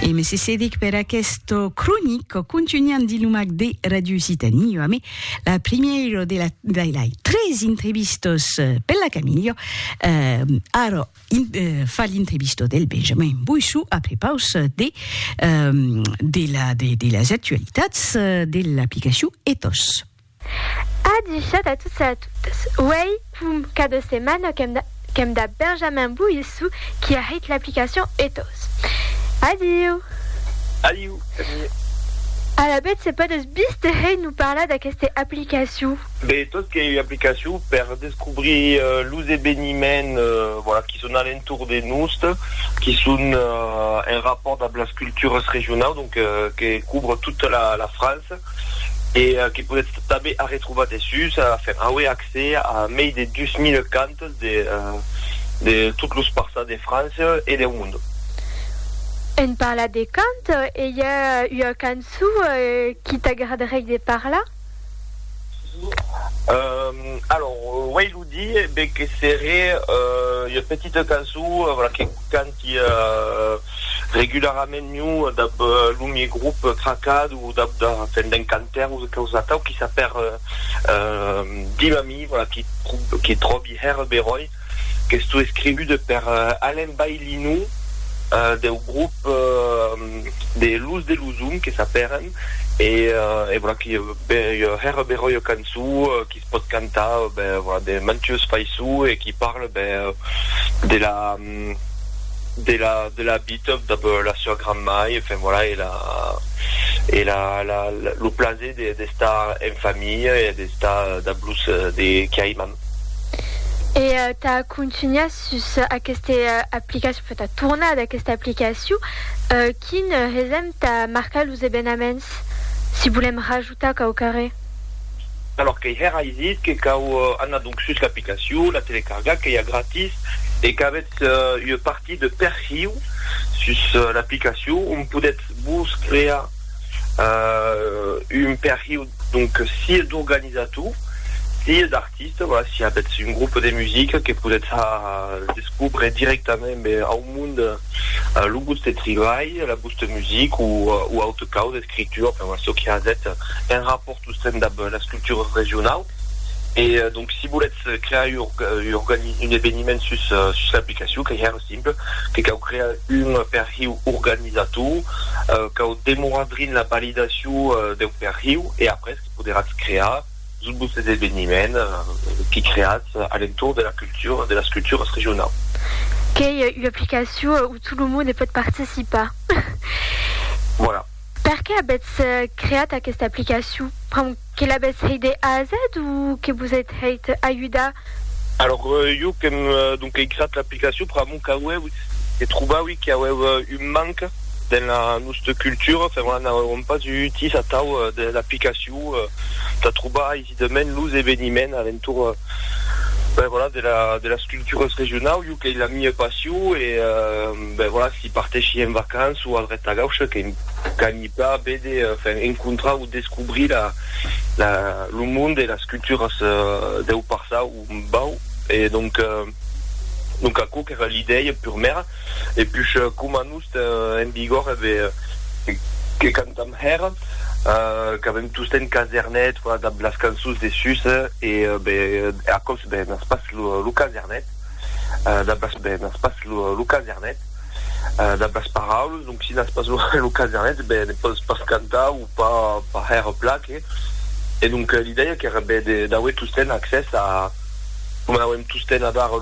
E me sesedic per aquesto cronic o contunhant di lumac de Radio Occitanie, jo amé la primièro de la de la tres entrevistos per la Camillo. Euh, ara in, euh, fa l'entrevisto del Benjamin Boissou a prepaus de euh, de la de, de las actualitats de l'aplicacion Ethos. A dichat a tots e a totas, uèi fum cada setmana qu'èm dab Benjamin Boissou qui a hèit l'aplicacion Ethos. Adiu! Adiu, Camille! Alavetz se podètz bistèhèi nous parlar d'aqueste aplicacion? Be, Ethos qu'ei ua aplicacion per descobrir los eveniments qui son a l'entorn de nost, qui son en rapòrt dab las cultures regionaus, donc que cobre tota la França. e que podètz tanben arretrobar dessús a faire auer accès a mei de 2000 cantes de de tot los parças de França e deu monde. En parlat de cant, e i a ua cançó qui t'agradarèi de parlar? Alors, uèi lo dir, ben que seré ua petita cançó, voilà, que cant Qu'ia regularament miu dab lo mie grup Cracad o dab da fèn d'un cantaire o causa atau qui s'a per dim a mi, voilà, qui qui tròbi hèr beròi qu'estó escrivude per Alain Baillinou deu grup de Luz de Luzum que s'a pèren e e voilà qui ua hèr beròi ua cançó qui se pòt cantar, ben, voilà, de mantues faiçons e qui parle, ben, de la. de la de la bitob dab la sua granmai e enfin voilà e la e la la lo plaser de d'estar en familha e d'estar dab los de qui aiman. E tà contunhar sus aqueste aplicacion, enfin tà tornar d'aquesta aplicacion, quin hesèm tà marcar los evenaments si volèm rajustar? Tà cau carrer. Alòr qu'ei hèr ai dit que cau anar donc sus l'aplicacion, la telecargar qu'ei a gratis e qu'avètz ua partir de perhiu sus l'aplicacion ont podètz vos crear un perhiu donc sia d'organizator sia d'artista, voilà, si avètz un groupe de musica que podètz a descobre directament ben au monde lo vòste tribalh, la vòsta musica o auta causa. creature, enfin voilà, çò qui has hèt un rapòrt sostèn dab las cultures regionaus. E donc si volètz crear un eveniment sus l'aplicacion, qu'ei hèr simple, que cau crear un perhiu organizator, cau demorar drin la validacion deu perhiu e après que poderatz crear. Subs es eveniments que creatz a l'entorn de la cultura, de las culturas regionaus. Qu'ei ua aplicacion où tot lo monde pòt participar. Voilà. Perqué avètz creat aquesta aplicacion? Pr'amor que l'avètz hèit de A a Z o que vos ètz hèit ajudar? Alors, jo qu'èm donc ei creat l'aplicacion pr'amor qu'auèu que trobaui qu'auèu un manque dens la nosta cultura, enfin voilà, n'auèuem pas eu utís atau de l'aplicacion. pòu t'atrobar aisidament los eveniments alentorn ben voilà de la de las cultures regionau jo qu'ei la mia passion e ben voilà si parteshi en vacances o al ret tagau ce que qu'aimi pas vede enfin encontrar o descobrir la la lo monde e las cultures deu passau Bau, e donc, donc aquò qu'èra l'idèia purmèra, e push coma nos ten en vigor eve que cantam hèra, qu'avem tostemp casernet, voilà, dab las cançons de sus, e be, aquò's be n'as pas lo casernet, dab las, be n'as pas lo casernet, dab las paraules, donc si n'as pas lo casernet, be ne pòs pas cantar, o. pas hèr pla que e donc l'idèia qu'èra ben d'auer tosten accès a coma n'auem tosten a dar